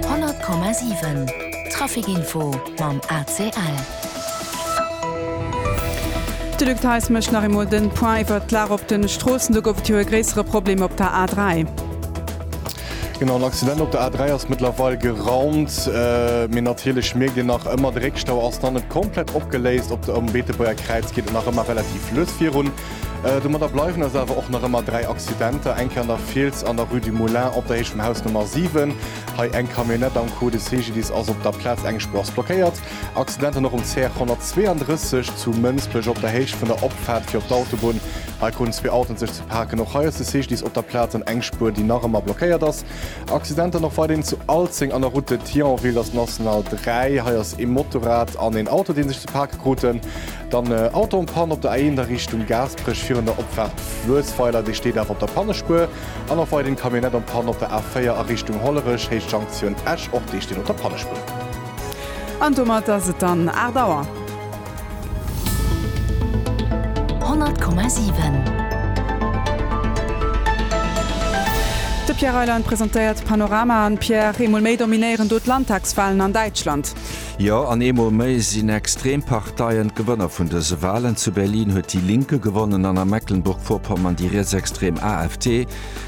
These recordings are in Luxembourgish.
100,7 Trafic Info mam ACL. De Luc Theis mécht nach eemol de Point iwwert d'Lag op de Stroossen. Do gouf et jo e gréissere Problem op der A3. Genau, en Accident op der A3 ass mëttlerweil geraumt, mee natierlech mierkt een nach ëmmer, de Réckstau ass nach net komplett opgeléist. Op der, um Beetebuerger Kräiz geet et nach ëmmer relativ lues virun. Domadder bleiwen ass awer och nach ëmmer dräi Accidenter, eng Kéier an der Fiels an der Rue du Moulin op der Héicht vum Haus Nummer 7. Hei eng Camionnette am Code de Segelys ass op der Plaz eng Spur ass blockéiert. Accidenten och um CR 132 zu Mënsbech op der Héicht vun der Opfaart fir op d'Autobunn. Hei kruten zwee Autoen sech ze paken. Och hei ass de Segelys op der Plaz an eng Spur déi nach ëmmer blockéiert ass. Accidenter och weiderhin zu Alzeng an der Route de Thionville, ass National 3. Hei ass ee Motorrad an een Auto dee sech ze pake kruten. Dann Auto en panne op der A1 a Richtung Gaasperech virun der Opfaart Fluessweiler, dee steet awer op der Pannespuer. An och weiderhin Camionnette en panne op der A4 a Richtung Hollerech, Héicht Jonktioun Esch, och déi steet op der Pannespuer. An domat ass et dann 8 Auer. 100,7. De Pierre Reyland presentéiert d'Panoramaen. Pierre, eemol méi dominéieren do d'Landtagswalen an Däitschland. Jo, an eemol méi sinn extrem Parteien d'Gewënner vun dëse Walen. Zu Berlin huet déi Linke gewonnen an a Mecklenburg-Vorpommern déi rietsextrem AfD.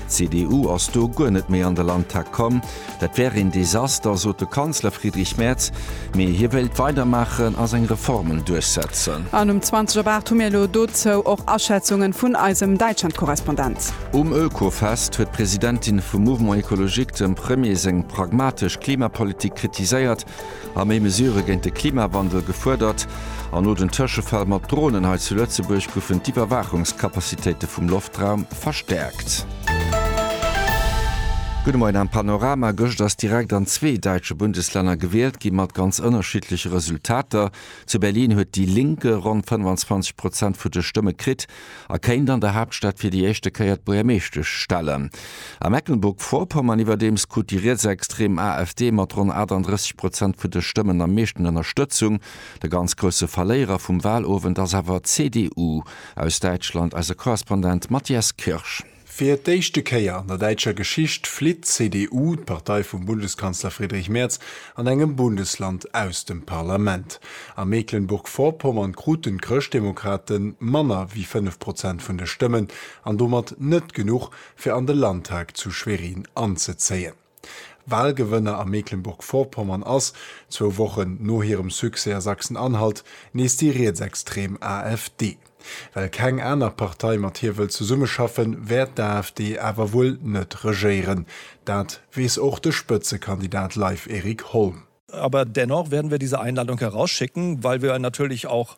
D'CDU ass do guer net méi an de Landtag komm. Dat wär een Desaster, sot de Kanzler Friedrich Merz. Mee hie wéilt weidermaachen a seng Reformen duerchsetzen. An um 20 op 8 hu mir elo dozou och Aschätzungen vun eisem Däitschland-Korrespondent. Um Oekofest huet d'Presidentin vum Mouvement Ecologique dem Premier seng pragmatesch Klimapolitik kritiséiert a méi Mesurë géint de Klimawandel gefuerdert, an no den Tëschefäll mat Dronen hei zu Lëtzebuerg goufen d'Iwwerwaachungscapacitéite vum Loftraum verstäerkt. Gudde Moien am Panorama. Gëscht ass direkt an zwee däitsche Bundeslänner gewielt ginn, mat ganz ënnerschiddleche Resultater. Zu Berlin huet déi Linke ronn 25 Prozent vu de Stëmme kritt. a kéint an der Haaptstad fir déi éischte Kéier d'Buergermeeschtesch stellen. A Mecklenburg-Vorpommern iwwerdeems krut déi rietsextrem AfD mat ronn 38 Prozent vun de Stëmmen am meeschten Ënnerstëtzung. De ganz grousse Verléierer vum Wahlowend ass awer d'CDU aus Däitschland, eise Korrespondent Matthias Kirsch. Fir d'éischte Kéier an der däitscher Geschicht flitt d'CDU, d'Partei vum Bundeskanzler Friedrich Merz, an engem Bundesland aus dem Parlament. A Mecklenburg-Vorpommern kruten d'Chrëschtdemokrate manner wéi 5 Prozent vun de Stëmmen an domat net genuch, fir an de Landtag zu Schwerin anzezéien. Walgewënner a Mecklenburg-Vorpommern ass, zwou Wochen no hirem Succès a Sachsen-Anhalt, nees déi rietsextrem AfD. Well keng aner Partei mat hir wëll zesummeschaffen, wäert d'AfD awer wuel net regéieren. Dat weess och de Spëtzekandidat Live Erik Holm. Aber dennoch werden wir diese Einladung herausschicken, weil wir natürlich auch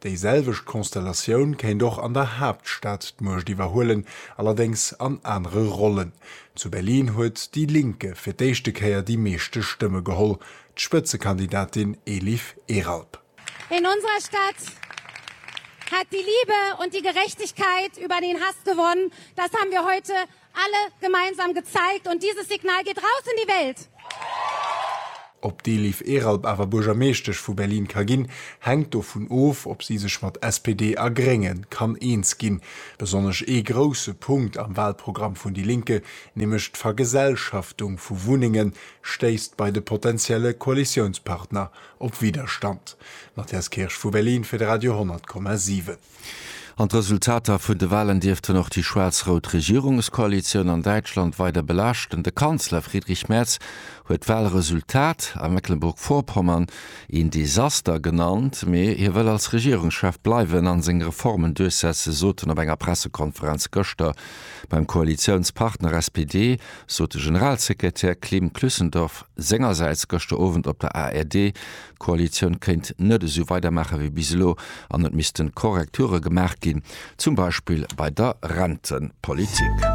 Déi selwecht Konstellatioun kéint och an der Haaptstad d'Muecht iwwerhuelen, allerdéngs an anere Rollen. Zu Berlin huet déi Linke fir d'éischte Kéier déi meeschte Stëmme geholl, d'Spëtzekandidatin Elif Eralp. In unserer Stadt hat die Liebe und die Gerechtigkeit über den Hass gewonnen, das haben wir heute Alle gemeinsam gezeigt und dieses Signal geht raus in die Welt! Ob d'Eliv Eralp awer Buergermeeschtesch vu Berlin ka ginn, hänkt dovun of, ob si sech mat SPD a Grénge kann eens ginn. Besonnesch ee grousse Punkt am Walprogramm vun déi Linke, nämlech d'Vergesellschaftung vu Wunnenge stéisst bei de potentielle Koalitiounspartner op Widderstand. Matthias Kirsch vu Berlin fir de Radio 10,7. An d'Resultater vun de Wahlen dierften och déi schwaarz-rout Regierungskoalitioun an Däitschland weider belaaschten. De Kanzler Friedrich Merz huet d'Wahlresultat a Mecklenburg-Vorpommern een Desaster genannt, mee hie wëll als Regierungschef bleiwen an seng Reformen duerchsetze, sot en op enger Pressekonferenz gëschter. Beim Koalitiounspartner SPD sot de Generalsekretär Klim Klüssendorff sengersäits gëschter Owend op der ARD, D'Koalitioun kéint net esou weidermaache wéi bis elo an et misste Korrekture gemaach ginn, zum Beispill bei der Rentepolitik.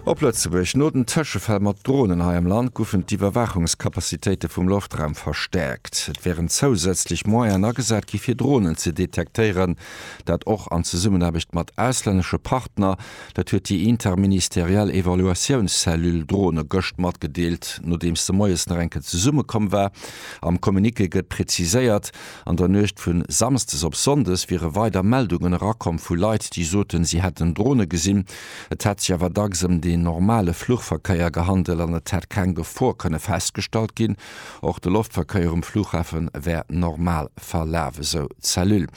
Op Lëtzebuerg, No den Tëschefäll mat Dronen hei am Land goufen d'Iwwerwaachungscapacitéite vum Loftraum verstäerkt. Et wären zousätzlech Moyenen agesat gi fir Dronen ze detektéieren, dat och an Zesummenaarbecht mat auslännesche Partner. Dat huet déi interministeriell Evaluatiounscellule Drone gëscht matgedeelt, nodeems se moies nach eng Kéier zesummekomm war. Am Communiqué gëtt preziséiert, an der Nuecht vu Samsdes op Sonndes wiere weider Meldungen erakomm vu Leit, déi soten, si hätten Drone gesinn. Et hätt sech awer dacks ëm deen normale Fluchverkéier gehandelt an et hätt keng Gefor kënne festgestallt ginn. Och de Loftverkéier um Fluchhafe wäert normal verlafe, sou d'Cellule.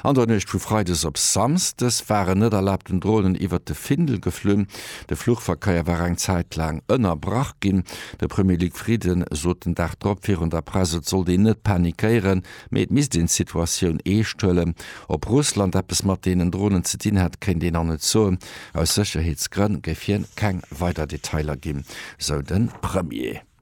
An der Nuecht vu Freides op Samsdes war en net erlaabten Dronen iwwert de Findel geflunn. De Fluchverkéier war eng Zäit laang ënnerbrach ginn. De Premier Luc Frieden sot den Dag drop virun der Press, et sollt een net panikéieren, mee et misst een d'Situatioun eescht huelen. Ob Russland eppes mat deenen Dronen ze dinn hätt, kéint een nach net soen. Aus Sécherheetsgrënn géif hien keng weider Detailer ginn, sou de Premier.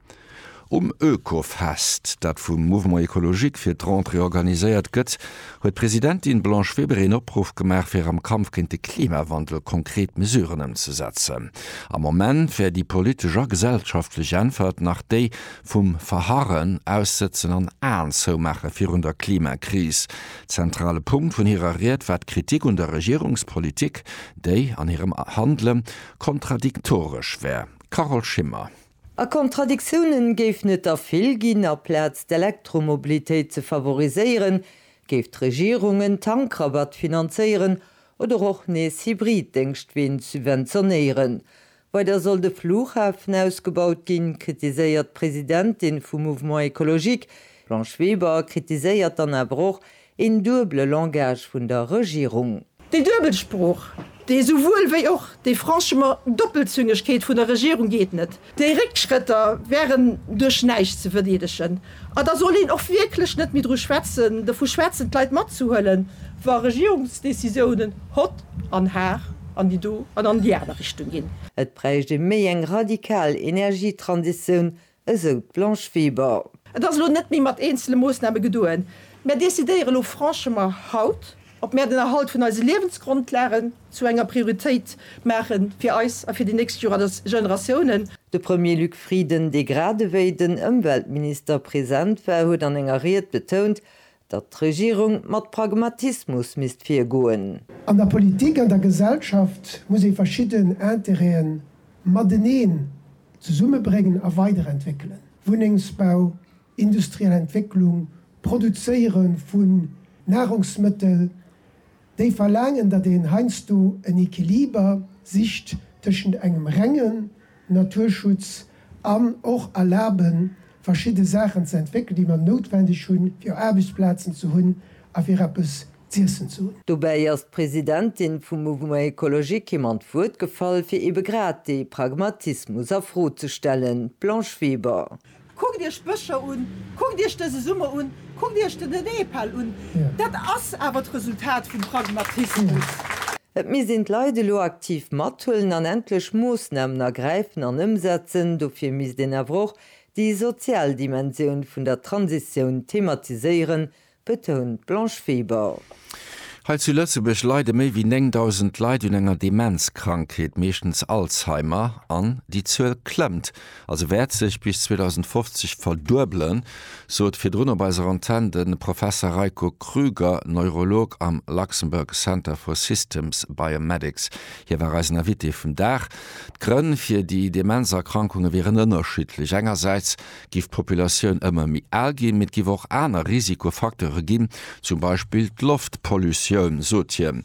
Um Oekofest, dat vum Mouvement Ecologique fir d'Rentrée organiséiert gëtt, huet d'Presidentin Blanche Weber een Opruff gemaach fir am Kampf géint de Klimawandel konkret Mesuren ëmzesetzen. Am Moment wär déi politesch a gesellschaftlech Äntwert nach déi vum Verharren, Aussëtzen an Aen zoumaache virun der Klimakris. Zentrale Punkt vun hirer Ried war d'Kritik un der Regierungspolitik, déi an hirem Handele kontradiktoresch wär. Carole Schimmer. A Kontradiktiounen géifen et der vill ginn. A Plaz d'Elektromobilitéit ze favoriséieren, géif d'Regierung en Tankrabatt finanzéieren oder och nees Hybrid-Déngschtween subventionéieren. Weider soll de Flughafen ausgebaut ginn, kritiséiert d'Presidentin vum Mouvement Ecologique. D'Blanche Weber kritiséiert dann awer och, Een duebele Langage vun der Regierung. Déi duebel Sprooch, dee souwuel wéi och déi franchement Doppelzüngegkeet vun der Regierung geet net. Déi Réckschrëtter wären duerch näischt ze verdeedegen. A da soll een och wierklech net méi dru schwätzen, dovu schwätzen, d'Leit matzehuelen, wa Regierungsdécisiounen hott an har an déi do an an déi aner Richtung ginn. Et bräicht ee méi eng radikal Energietransitioun, esou d'Blanche Weber. Et ass elo net méi mat eenzele Moossname gedoen. Mär decidéiere lo franchement haut, ob mär den Erhalt vun eise Liewensgrondlagen zu enger Prioritéit maache fir eis a fir déi nächst Generatiounen. De Premier Luc Frieden, dee gradewéi den Ëmweltminister present war, huet an enger Ried betount, datt d'Regierung mat Pragmatismus misst virgoen. An der Politik, an der Gesellschaft muss ee verschidden Interêten mateneen zesummebréngen a weiderentwéckelen, Wunnengsbau, industriell Entwécklung, Produzéiere vu Nahrungsmëttel, déi verlaangen, datt een heiansdo en Equiliber sicht tëschent engem rengen Naturschutz an och erlaben, verschidde Saachen ze entwéckelen, déi mer noutwendeg hunn, fir Aarbechtsplazen ze hunn a fir eppes z'iessen ze hunn. Dobäi ass d'Presidentin vum Mouvement Ecologique him an d'Wuert gefall, fir eebe grad dee Pragmatismus a Fro ze stellen, d'Blanche Weber. Kuckt iech d'Bëscher un, kuckt iech dëse Summer un, kuckt iech de Nepal un. Dat ass awer d'Resultat vum Pragmatismus. Et misst een d'Leit elo aktiv mathuelen an endlech Moossnamen ergräifen an ëmsetzen. Dofir misst een awer och déi sozial Dimensioun vun der Transitioun thematiséieren, betount d'Blanche Weber. Hei zu Lëtzebuerg leide méi wéi 9.000 Leit un enger Demenzkrankheet, meeschtens Alzheimer, an déi Zuel klëmmt, also wäert sech bis 2050 verduebelen, sot virdrun op eiser Antenn de Professer Reiko Krüger, Neurolog am Luxembourg Center for Systems Biomedics. Hie war eisen Invité vum Dag. D'Grënn fir déi Demenzerkrankunge wieren ënnerschiddlech. Engersäits Giff d'Populatioun ëmmer méi al ginn, mee et giff och aner Risikofacteure ginn, zum Beispill d'Loftpollutioun, sot hien.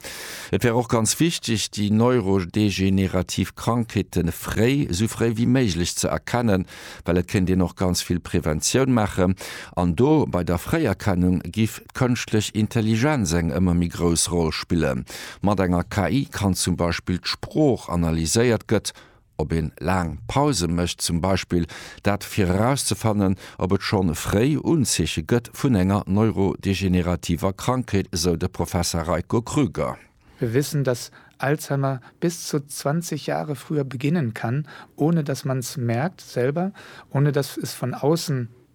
Et wär och ganz wichteg, déi neurodegenerativ Krankheete fréi, esou fréi wéi méiglech ze erkennen, well et kéint een och ganz vill Preventioun maachen. An do, bei der Fréierkennung, giff d'kënschtlech Intelligenz eng ëmmer méi grouss Roll spillen. Mat enger KI kann zum Beispill d'Sprooch analyséiert gëtt. ob een laang Pausen mécht zum Beispill, dat fir erauszefannen, ob et schonn fréi Unzeeche gëtt vun enger neurodegenerativer Krankheet, esou de Professer Reiko Krüger. Wir wissen, dass Alzheimer bis zu 20 Jahre früher beginnen kann, ohne dass man es merkt selber, ohne dass es von außen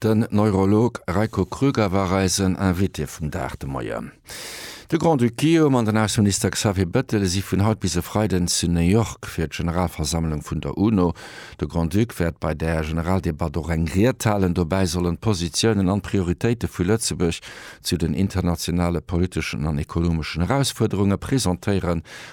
Den Neurolog Reiko Krüger war eisen Invité vum Dag de Moien. De Grand-Duc Guillaume an den Ausseminister Xavier Bettel si vun haut bis e Freiden zu New York fir d'Generalversammlung vun der UNO. De Grand-Duc wäert bei där Generaldebatt och eng Ried halen. Dobäi sollen d'Positiounen an d'Prioritéite vu Lëtzebuerg zu den internationale politeschen an ekonomeschen Erausfuerderunge presentéieren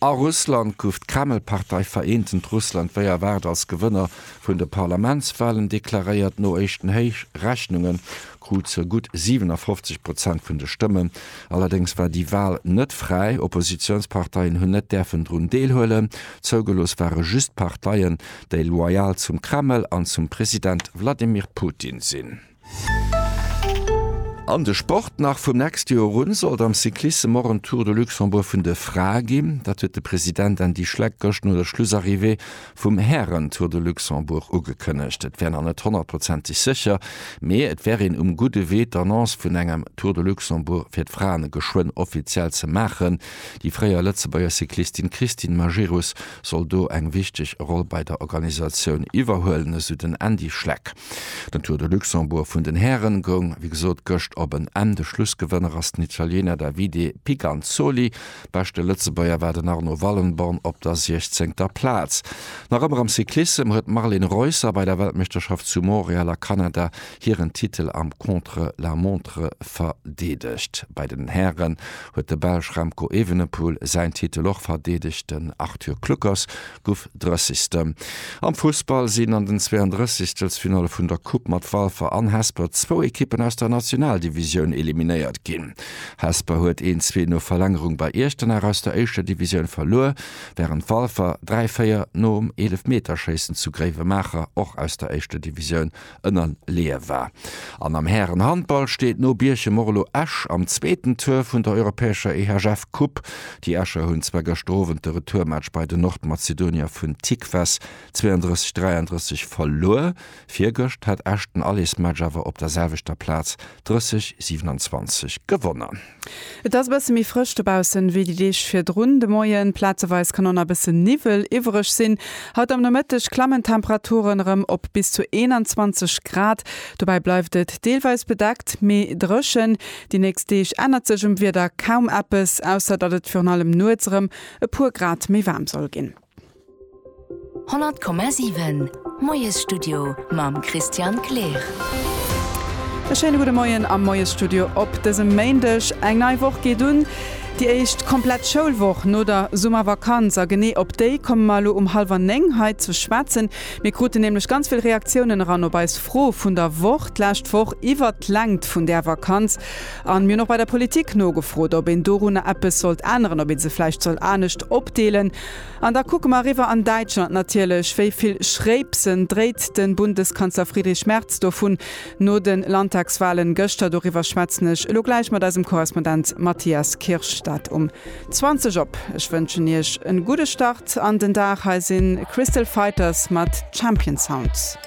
A Russland gouf d'Kreml-Partei Vereentent Russland wéi erwaart als Gewënner vun de Parlamentswalen deklaréiert. No éischten Rechnunge krut se gutt 57 Prozent vun de Stëmmen. Allerdéngs war déi Wal net fräi, Oppositiounsparteien hunn net däerfen drun deelhuelen. Zougelooss ware just Parteien, déi loyal zum Kreml an zum President Wladimir Putin sinn. An de Sport nach, Vum nächste Joer un sollt am Cyclissem och en Tour de Luxembourg vun de Frae ginn. Dat huet de President Andy Schleck gëscht no der Schlussarrivée vum Hären-Tour de Luxembourg ugekënnegt. Et wär nach net honnertprozenteg sécher, mee et wär een um gudde Wee d'Annonce vun engem Tour de Luxembourg fir d'Fraen geschwënn offiziell ze maachen. Déi fréier Lëtzebuerger Cyclistin Christine Majerus soll do eng wichteg Roll bei der Organisatioun iwwerhuelen, esou den Andy Schleck. Den Tour de Luxembourg vun den Hären goung wéi gesot gëscht op en Enn. De Schlussgewënner ass den Italiener Davide Pigansoli. Beschte Lëtzebuerger war den Arno Wallenborn op der siechzéngter Plaz. Nach ëmmer am Cyclissem huet d'Marlen Reusser bei der Weltmeeschterschaft zu Montreal a Kanada hiren Titel am Contre-la-montre verdeedegt. Bei den Hären huet de Belsch Remco Evenepoel säin Titel och verdeedegt. Den Arthur Kluckers guff Drëssigsten. Am Fussball sinn an den 32 Finalle vun der Coupe mat Walfer an Hesper zwou Ekippen aus der Nationaldivisioun eliminéiert ginn. Hesper huet 1-2 no Verlängerung bei Iechternach aus der éischter Divisioun verluer, während Walfer 3-4 nom Eelefmeterschéissen zu Gréiwemaacher och aus der éischter Divisioun ënnerleeë war. An am Härenhandball steet no Bierchem och elo Esch am zweeten Tour vun der europäescher EHF Cup. Déi Escher hunn zwar gëschter Owend de Retourmatch bei den Nordmazedonier vun Tikves 32, 33 verluer, virgëscht hat Esch den Allesmatch awer op der selwechter Plaz 30, 27 gewonnen. Et ass e bësse méi frësch dobaussen wéi déi Deeg virdrun. De Moien plazeweis kann och nach e bësse Niwwel iwwereg sinn. Haut am Nomëtteg klammen d'Temperaturen erëm op bis zu 21 Grad. Dobäi bleift et deelweis bedeckt, mee dréchen. Déi nächst Deeg ännert sech um Wieder kaum eppes, ausser datt et virun allem nuets erëm e puer Grad méi waarm soll ginn. 100,7 Moiesstudio mam Christian Kleer. E schéine gudde Moien am Moiesstudio op dësem Méindeg. Eng nei Woch geet un, déi éischt komplett Schoulwoch no der Summervakanz. A genee op déi komme mer elo um hallwer néng hei ze schwätzen. Mir kruten nämlech ganz vill Reaktiounen eran op eis Fro vun der Woch d'lescht Woch iwwert d'Längt vun där Vakanz. A mir hunn och bei der Politik nogefrot, ob een dorunner eppes sollt änneren, ob ee se vläicht soll anescht opdeelen. An da kucke mer eriwwer an Däitschland natierlech. Wéi vill Schréipsen dréit de Bundeskanzler Friedrich Merz do vun no de Landtagswahlen gëschter? Doriwwer schwätzen ech elo gläich mat eisem Korrespondent Matthias Kirsch. Dat um 20 op. Ech wënschen Iech en gudde Start an den Dag. Hei sinn Crystal Fighters mat Champion Sound.